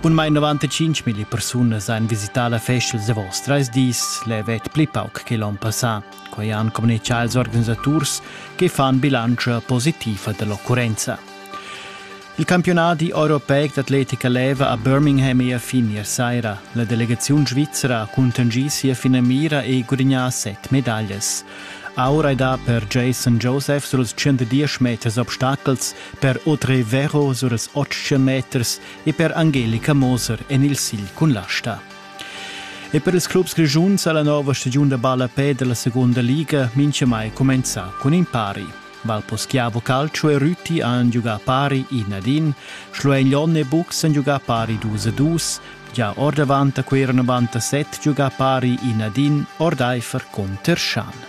Bunmain 95 000 persunas han visità la festa da vos trais dis, levet pli pauc che l'on passà. Quai han communitgà ils organisaturs che fan bilantscha positiva dell'occurrenza. Il campionat europeic d'atletica leva a Birmingham e a fin ier saira. La delegaziun svizzera ha contengì sia finamira e gudagnà set medaglias. Aura è da per Jason Joseph sur els 110 meters obstacels, per Audrey Vero sur els 800 meters e per Angelica Moser en il sigl cun l'asta. E per ils clubs grischuns ha la nova stagiun da ballapè della seconda liga mai comenzà con in pari. Valposchiavo Calcio e Rüti han giocà pari in ad in, Schluegnon e Bux han giocà pari 2 a 2, già or davanti a quei erano 97 giocà pari in ad in, Ordeifer con Terschan.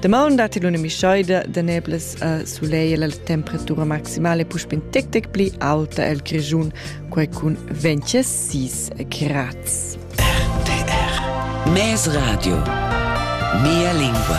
Damaun dat il una mischoida da neblas a suleia la temperatura maximale puspin tec tec pli alta el Grischun, quai cun 26 grads. RTR Mes Radio Mia lingua